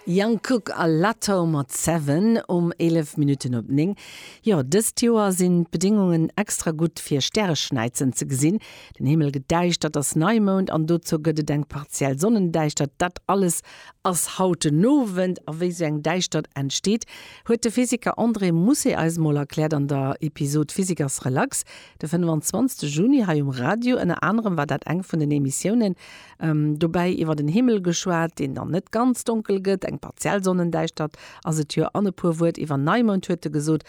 Jungkook a Latto mat Seven um 11 Minutten op 9. Jo, dëst Joer sinn d'Bedingungen extra gutt fir Stäreschnäizen ze gesinn. Den Himmel gëtt däischter, et ass Neimound an dozou gëtt et eng partiell Sonnendäischtert. Dat alles ass haut den Owend. A wéi esou eng Däischtert entsteet, huet de Physiker André Mousset eis mol erkläert an der Episod Physikers Relax de 25 Juni hei um Radio. Ënner anerem war dat eng vun den Emissiounen, Dobäi iwwer en Himmel geschwat, deen dann net ganz donkel gëtt, eng partiell Sonnendäischtert ass et jo. An e puer Wuert iwwer Neimound huet e gesot.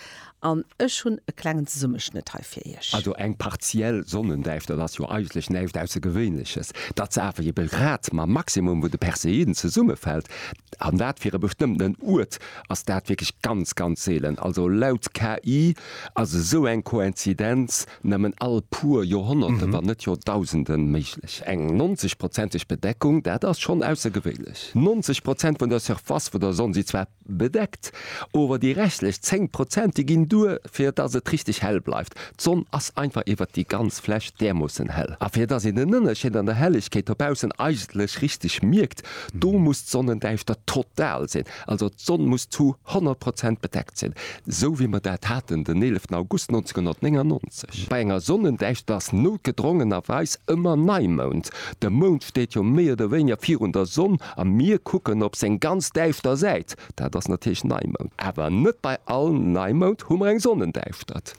An ech hunn e klengen Zesummeschnëtt hei fir Iech. Also eng partiell Sonnendäischtert ass jo eigentlech näischt Aussergewéinleches. Dat se awer eben grad mam Maximum vun de Perseiden zesummefält, an dat fir e bestëmmtenen Uert, ass dat wierklech ganz, ganz seelen. Also laut KI ass esou eng Koinzidenz Nëmmen all puer Joerhonnerte, wann net Joerdausende méiglech. Eng 90 prozenteg Bedeckung, dat ass schonn aussergewéinlech. 90 Prozent vun der Surface vun der Sonn si zwar bedeckt, ower déi restlech 10 Prozent, déi ginn duer, fir dass et richteg hell bleift. D'Sonn ass einfach iwwert déi ganz Fläch därmoossen hell. A fir dass een den Ënnerscheed an der Hellegkeet dobaussen eigentlech richteg mierkt, do muss d'Sonnendäischtert total sinn. Also d'Sonn muss zu 100 Prozent bedeckt sinn, esou wéi mer dat haten den 11 August 1999. Bei enger Sonnendäischtert ass noutgedrongenerweis ëmmer Neimound. De Mound steet jo méi oder wéineger virun der Sonn a mir kucken op seng ganz däischter Säit, dat ass natierlech Neimound. Awer net bei all Neimound hu mer eng Sonnendäischtert.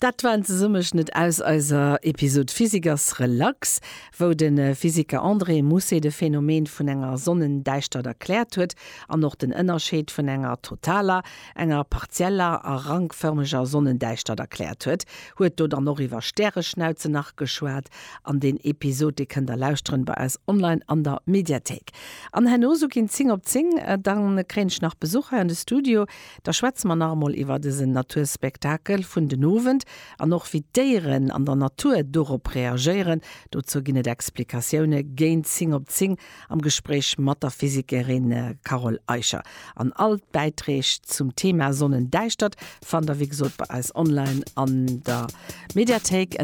Dat war en Zesummeschnëtt aus eiser Episod Physiker's Relax. wou de Physiker André Mousset de Phänomen vun enger Sonnendäischtert erkläert huet an och den Ënnerscheed vun enger totaler, enger partieller a rankfërmeger Sonnendäischtert erkläert huet, huet do dann och iwwer Stäreschnauze nach geschwat. An deen Episod, dee kënnt der lauschteren bei eis online an der Mediathéik. An herno, sou ginn 10 op 10, da kréien ech nach Besuch hei an de Studio, da schwätze mer nach emol iwwer dësen Naturspektakel vun den Owend. An och wéi d'Déieren an der Natur dorop reagéieren, dozou ginn et Explikatioune géint 10 op 10 am Gespréich mat der Physikerin Carole Eicher. An all d'Bäitreeg zum Thema Sonnendäischtert fannt der wéi gesot bei eis online an der Mediathéik.